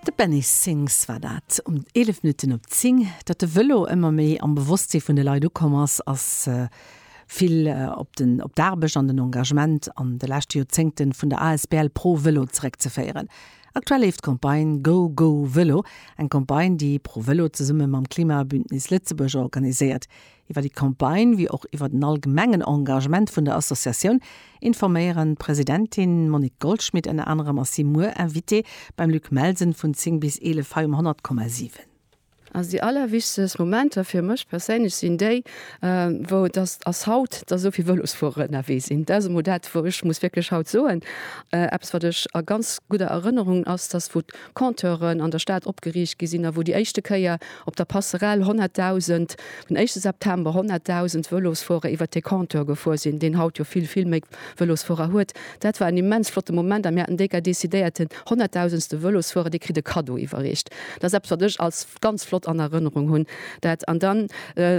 De Benny Sings war dat um 11 Minutten op 10. Datt de Vëlo ëmmer méi am Bewosstsee vun de Leit ukomm ass, ass vill op den op d'Aarbecht an den Engagement an de leschte Joerzéngte vun der asbl Pro Vëlo zeréckzeféieren. Aktuell leeft d'Campagne Go Go Vëlo, eng Campagne déi Pro Vëlo zesumme mam Klimabündnis Lëtzebuerg organiséiert. Iwwer déi Campagne wéi och iwwer den allgemengen Engagement vun der Associatioun informéieren d'Presidentin Monique Goldschmit ënner anerem ass si muer Invitée beim Luc Melsen vun 10 bis 11 hei um 100,7. Also déi allerwichtegst Momenter fir mech perséinlech sinn déi wou dass dass haut dass esou vill Vëlosfuerer ënnerwee sinn. Dat ass emol dat wou ech muss wierklech haut soen eppes wat ech a ganz gudder Erënnerung ass dass wou Compteuren an der Stad opgeriicht gi sinn a wou déi éischte Kéier op der Passerelle 100.000, den éischte September 100.000 Vëlosfuerer iwwert dee Compteur gefuer sinn, deen haut jo vill, vill méi Vëlosfuerer huet. Dat war en immens flotte Moment a mir haten déi Gei decidéiert, den honnertdausendste Vëlosfuerer, dee kritt e Kaddo iwwerreecht. Dat ass eppes, wat ech als ganz flott an Erënnerung hunn. Dat an dann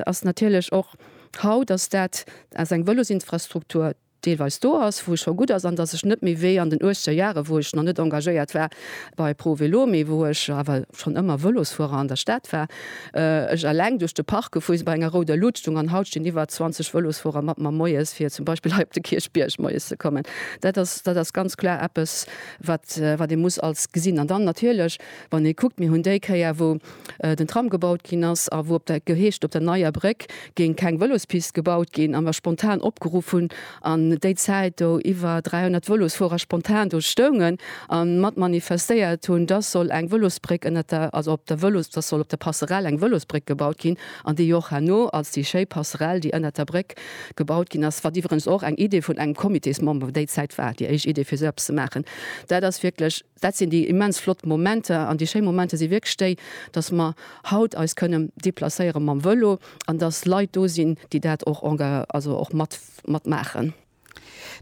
ass natierlech och haut ass dat ass eng Vëlosinfrastruktur, deelweis do ass, wou scho gutt ass an datt ech net méi wéi an den uechter Jahre, wou ech nach net engagéiert war bei Pro Vélo, mee wou ech awer schonn ëmmer Vëlosfuerer an der Stad war, ech eleng duerch de Park gefuer sinn, bei enger rouder Luut stoung. An haut stinn iwwer 20 Vëlosfuerer mat mer moies, fir zum Beispill hei op de Kierchbierg moies ze kommen. Dat ass, dat ass ganz kloer eppes, wat, wat ee muss als gesinn. An dann natierlech, wann ee kuckt, mir hunn déi Kéier, wou den Tram gebaut ginn ass a wou op der geheescht op der Neier Bréck géing keng Vëlospist gebaut ginn a mer spontan opgeruff hunn an déi Zäit do iwwer 300 Vëlosfuerer spontan do stoungen a mat manifestéiert hunn, dass soll eng Vëlosbréck ënnert der, also op der Vëlos, dass soll op der Passerell eng Vëlosbréck gebaut ginn an déi och herno als déi schéi Passerell, déi ënnert der Bréck gebaut ginn ass, wat iwweregens och eng Idee vun engem Comitésmember déi Zäit war, déi éischt Idee fir esou eppes ze maachen, dat ass wierklech. Dat sinn déi immens flott Momenter. An déi schéi Momenter si wierklech déi, dass mer haut eis kënnen deplacéiere mam Vëlo an dass Leit do sinn, déi dat och enga-, also och mat, mat maachen.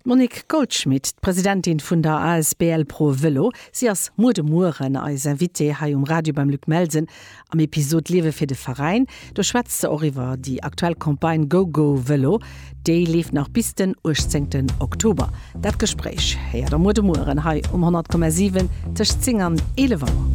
D'Monique Goldschmit, d'Presidentin vun der asbl Pro Vëlo. Si ass muer de Mueren eis Invitée hei um Radio beim Luc Melsen. Am Episod Liewe fir de Veräin, do schwätzt se och iwwer déi aktuell Campagne Go Go Vëlo. Déi leeft nach bis den 18 Oktober. Dat Gespréich héiert der muer de Mueren hei um 100,7 tëscht 10 an 11 Auer.